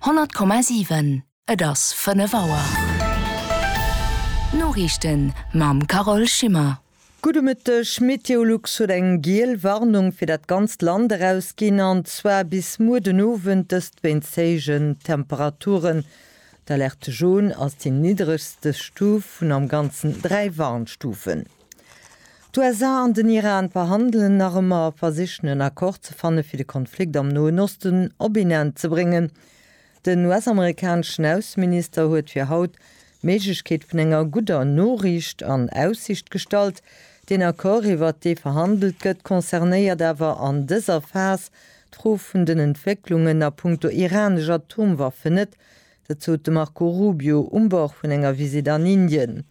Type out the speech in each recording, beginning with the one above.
Honnert Komma siwen Et ass fënnef Auer. D'Noriichten mam Carole Schimmer. Gudde Mëtteg, Meteolux huet eng giel Warnung fir dat ganzt Land erausginn, an zwar bis muer den Owend, dëst wéinst héijen Temperaturen. D'Alerte Jaune ass déi niddregste Stuf vun am Ganzen dräi Warnstufen. D'USA an den Iran verhandelen nach ëmmer a versichen en Accord ze fanne fir de Konflikt am Noen Osten op een Enn ze bréngen. Den US-amerikaneschen Ausseminister huet fir haut d'Méiglechkeet vun enger gudder Noriicht an Aussicht gestallt. Deen Accord iwwert dee verhandelt gëtt, concernéiert awer an dëser Phas d'Fro vun den Entwécklungen a punkto iranesch Atomwaffen net. Dat sot de Marco Rubio um Bord vun enger Visitt an Indien.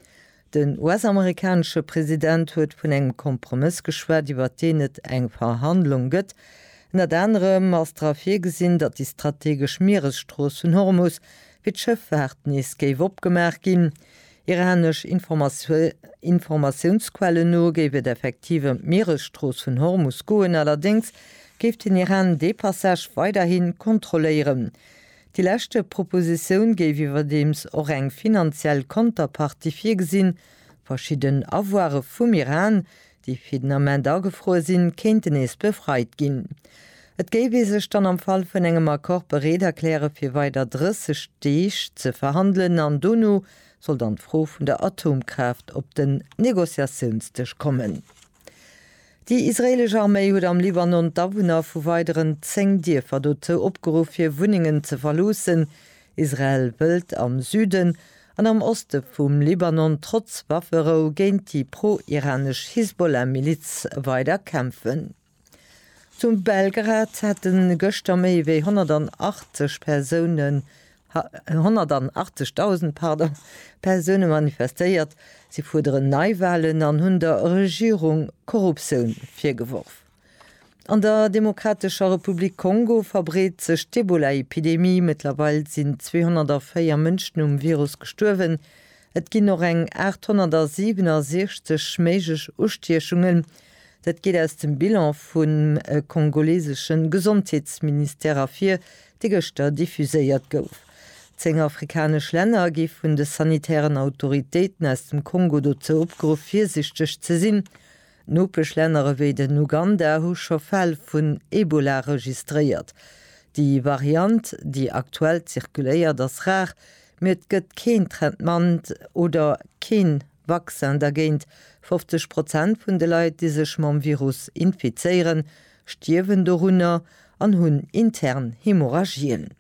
Den US-amerikanesche President huet vun engem Kompromëss geschwat, iwwert deen et eng Verhandlung gëtt. Ënnert anerem ass dra virgesinn, datt déi strategesch Mieresstrooss vun Hormus fir d'Schëffaart nees géif opgemaach ginn. Iranesch Informatiounsquellen no géif et effektiv ëm d'Mieresstrooss vun Hormus goen, allerdéngs géif den Iran dee Passage weiderhi kontrolléieren. Déi lescht Propositioun géif iwwerdeems och eng finanziell Konterpartie virgesinn. Verschidden Avoire vum Iran, déi fir den Ament agefruer sinn, kéinten nees befreit ginn. Et géif ee sech dann am Fall vun engem Accord bereet erkläre fir weider 30 Deeg ze verhandelen an dono soll dann d'Fro vun der Atomkraaft op den Negociatiounsdësch kommen. Déi israeelesch Arméi huet am Libanon d'Awunner vu weideren 10 Dierfer dozou opgeruff hir Wunnengen ze verloossen. Israel wëllt am Süden an am Oste vum Libanon trotz Wafferou géint déi pro-iranesch Hisbollah-Miliz weider kämpfen. Zu Belgrad hätte gëschter méi wéi 180 Persoune 180.000, pardon, Persoune manifestéiert. Si fuerderen Neiwahlen an hunn der Regierung Korruptioun virgeworf. An der Demokratescher Republik Kongo verbreet sech d'Ebola-Epidemie. Mëttlerweil sinn 204 Mënschen um Virus gestuerwen, Et ginn och eng 867 méiglech Ustiechungen, dat geet aus dem Bilan vum kongolesesche Gesondheetsministère ervir, dee gëschter diffuséiert gouf. Zéng afrikanesch Länner gi vun de sanitären Autoritéiten aus dem Kongo dozou opgeruff, virsichteg ze sinn. Nopeschlänner ewéi den Uganda hu scho Fäll vun Ebola registréiert. Déi Variant, déi aktuell zirkuléiert, ass rar, mee et gëtt keen Traitement oder kee Vaccin dergéint. 50 Prozent vun de Leit, déi sech mam Virus infizéieren, stierwen dorunner an hunn intern Hemorrhagien.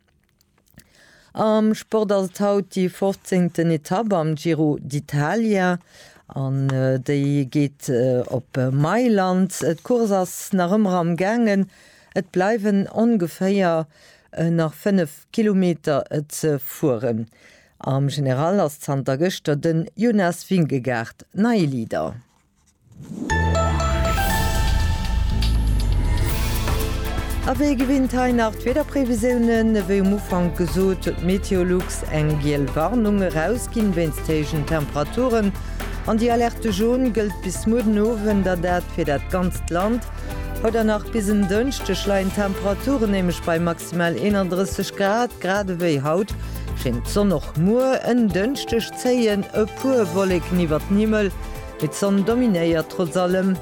Am Sport ass et haut déi 15. Etapp am Giro d'Italia an déi geet op Mailand. D'Course ass nach ëmmer am gaangen, et bleiwen ongeféier nach 5 Kilometer ze fueren. Am General ass zanter gëschter den Jonas Vingegaard neie Leader. A wéi gewinnt hei nach d'Wiederprevisiounen. Wéi um Ufank gesot huet Meteolux eng giel Warnung erausginn wéinst héijen Temperaturen an déi Alerte jaune gëllt bis muer den Owend a dat fir dat ganzt Land. Haut an nach bis en Dënschdeg leien d'Temperaturen nämlech bei maximal 31 Grad. Grad ewéi haut schéngt d'Sonn och muer en Dënschdeg. zéien e puer Wolleken iwwer den Himmel, mee d'Sonn dominéiert trotz allem.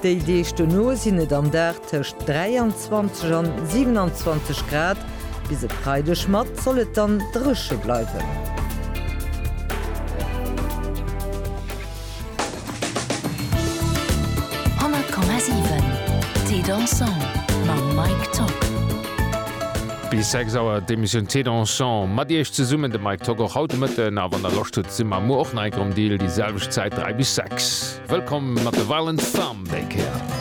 Déi Deeg dono sinn et am Dag tëscht 23 an 27 Grad. Bis e Freideg mat soll et dann dréche bleiwen. 100,7 Thé dansant mam Mike Tock. Bis 6 Auer d'Emissioun Thé dansant mat Iech zesummen, de Mike Tock och haut de Mëtten. A wann der Loscht hutt, si mer muer och nei. Gronn Deal, déi selwecht Zäit 3 bis 6. Wëllkomm mat de Violent Femmes déi Kéier.